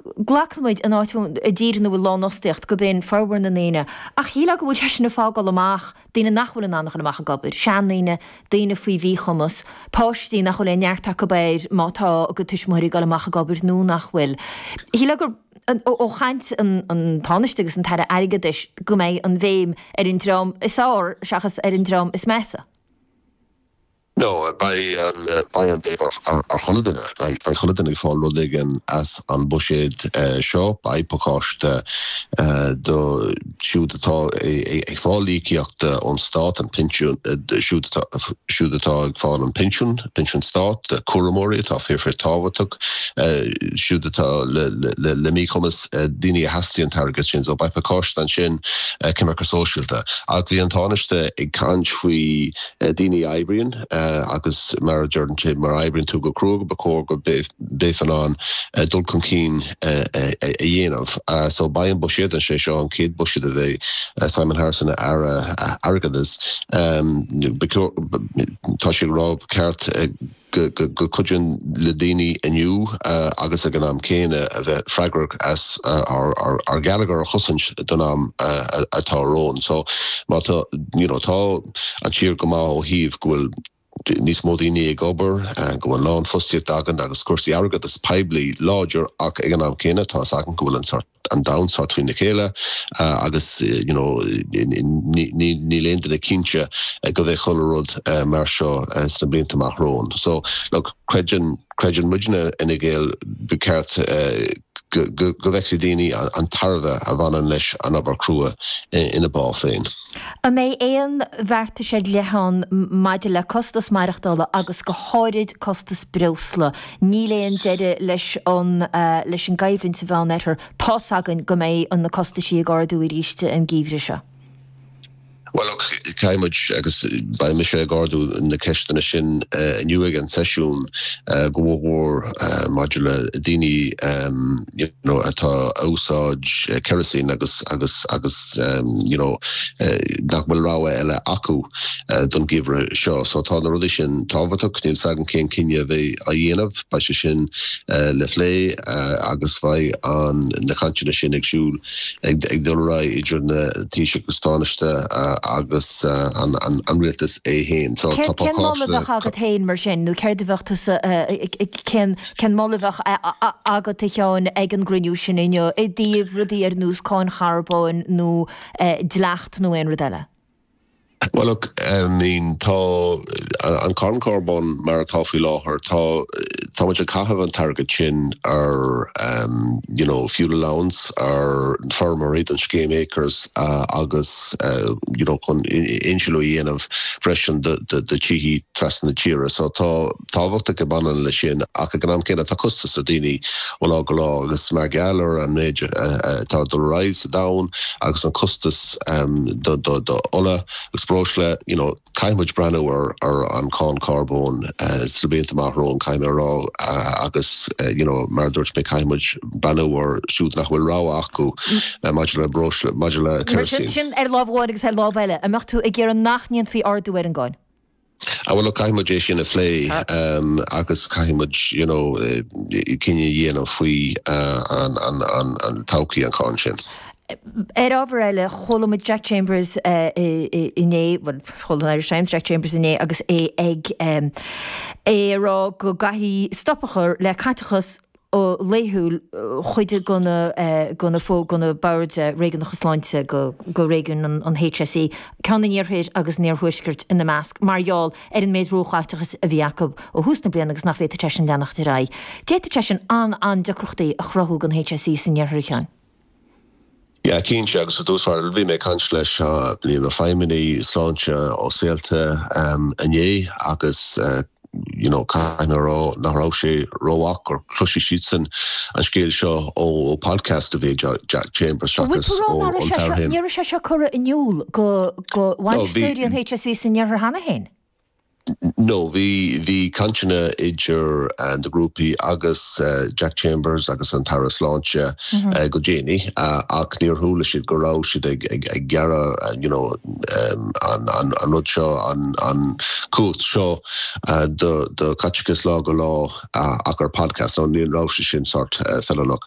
Glacann muid anáil i dtír ina bhfuil lánfhostaíocht go mbíonn formhór na ndaoine, ach shílfeá go bhfuil sé sin ag fágáil amach daoine nach bhfuil in ann a dhul amach ag obair, seandaoine, daoine faoi mhíchumas, páistí nach bhfuil aon neart acu air má tá a gcuid tuismitheoirí ag dul amach ag obair nó nach bhfuil. Shílfeá ó chaint an Tánaiste agus an tAire Airgeadais go mbeidh an bhéim ar an dream is fearr seachas ar an dream is measa. No, beidh an béim ar chuile duine. Beidh chuile duine ag fáil rud éigin as an buiséad seo. Beidh pacáiste do siúd atá ag fáil íocaíocht ón Stát, an pinsiún, siúd atá ag fáil an pinsiún, pinsiún Stáit, cúramóirí atá fíor fíor tábhachtach, siúd atá le míchumas, daoine a theastaíonn an t-airgead sin. So beidh pacáiste ansin, coimirce sóisialta. Ach bhí an Tánaiste ag caint faoi, daoine a oibríonn agus mar a deireann sé má oibríonn tú go cruaidh ba chóir go mbeifeá in ann dul chun cinn a dhéanamh so beidh an buiséad an sé seo an chéad buiséad a bheidh Simon Harris ina Aire Airgeadais tá sé ag rá ba cheart go gcuideodh le daoine inniu agus ag an am céanna a bheith freagrach as ár ngeilleagar a chosaint don am atá romhainn. So má tá, you know, tá an tír go maith ó thaobh go bhfuil níos mó daoine ag obair, go bhfuil lánfhostaíocht againn agus cúrsaí airgeadais poiblí láidir ach ag an am céanna tá fhios againn go bhfuil an sort, an domhan sórt trína chéile agus, you know, níl aon duine cinnte go mbeidh chuile rud mar seo sna blianta amach romhainn. So, look, creideann, creideann muidne i bhFine Gael ba cheart go bhfeicfidh daoine an tairbhe a bhaineann leis an obair crua ina bpá féin. An mbeidh aon bheartais ar leith ann maidir le costais maireachtála agus go háirid costais breosla Níl aon deireadh leis an leis an gcoimhlint sa Mheán Oirthear. Tá's againn go mbeidh an na costaisí ag ardú arís an geimhreadh seo. Bhuel look, caithfidh muid agus beidh mise ag ardú na ceisteanna sin inniu ag an seisiún go mór mór maidir le daoine, know, atá ag úsáid kerosene agus, agus, agus, you know, nach bhfuil rogha eile acu don geimhreadh seo. So tá na rudaí sin tábhachtach, níl s'agam cén cinneadh a bheidh á dhéanamh, beidh sé sin le plé agus beidh an, na cainteanna sin ag siúl, ag dul ar aghaidh idir an Taoiseach is an Tánaiste agus an Rialtas é féin. So tá pacáiste. Cén moladh a bheadh agat féin mar sin nó céard a bheadh tusa, cén, Cén moladh a bheadh agat, a Sheáin, ag an gcruinniú sin inniu i dtaobh rudaí ar nós cáin charbóin nó dleacht nó aon rud eile? Bhuel, look, I mean, tá an cáin charbóin mar atá faoi láthair, tá, tá muid ag caitheamh an t-airgead sin ar em, you know, fuel allowance, ar feirmeoirí don scéim ACRES agus you know chun insliú a dhéanamh freisin do do do do thithe trasna na tíre so tá, tábhacht ag baint leis sin ach ag an am céanna tá costas ar daoine ó lá go lá agus mar gheall ar an méid atá ag dul ar aghaidh sa domhan agus an costas do ola agus breosla you know caithfidh muid breathnú ar ar an cáin carbóin sna blianta amach romhainn caithfidh mé a rá agus you know mar a dúirt mé caithfidh muid breathnú ar siúd nach bhfuil rogha acu maidir le breosla maidir le kerosene sin ar lámh amháin agus ar lámh eile an mbeadh tú ag iarraidh nach ndéanfaí ardú ar an gcáin? Ah bhuel, look, caithfidh muid é sin a phlé agus caithfidh muid, you know, cinneadh a dhéanamh faoi an todhchaí an cháin sin. Ar ábhar eile, chuala muid Jack Chambers inné, bhuel, chuala an Irish Times Jack Chambers inné agus é ag rá go gcaithfí stop a chur le caiteachas, laethúil chuid de go na, go na boird réigiúnacha sláinte go réigiún an HSE, ceann san iarthar agus san iarthuaisceart ina measc, mar gheall ar an méid róchaiteachais a bhí acu ó thús na bliana agus nach bhféadfadh sé sin leanacht ar aghaidh. D'fhéadfadh sé sin an-an-deacrachtaí a chruthú dhon HSE san iarthar a Sheáin. Yeah, cinnte, agus i dtús báire, bhí mé ag caint leis na feidhmeannaigh sláinte ó Saolta inné agus you know caithfidh mé a rá nach raibh sé rómhaith gur chloisigh siadsan an scéal seo ó podcast a bhí ag Jack Chambers seachas ó an tAire féin. Ní raibh sé seo curtha in iúl go bhainisteoirí an HSE san iarthar cheana féin? No, bhí, bhí cainteanna idir na grúpaí agus Jack Chambers agus an tAire Sláinte go déanaí ach níor chuala siad go raibh siad ag gearradh, you know, an rud seo, an cumhacht seo do chaiteachas lá go lá ach ar podcast, so ní raibh sé sin sórt feileanach.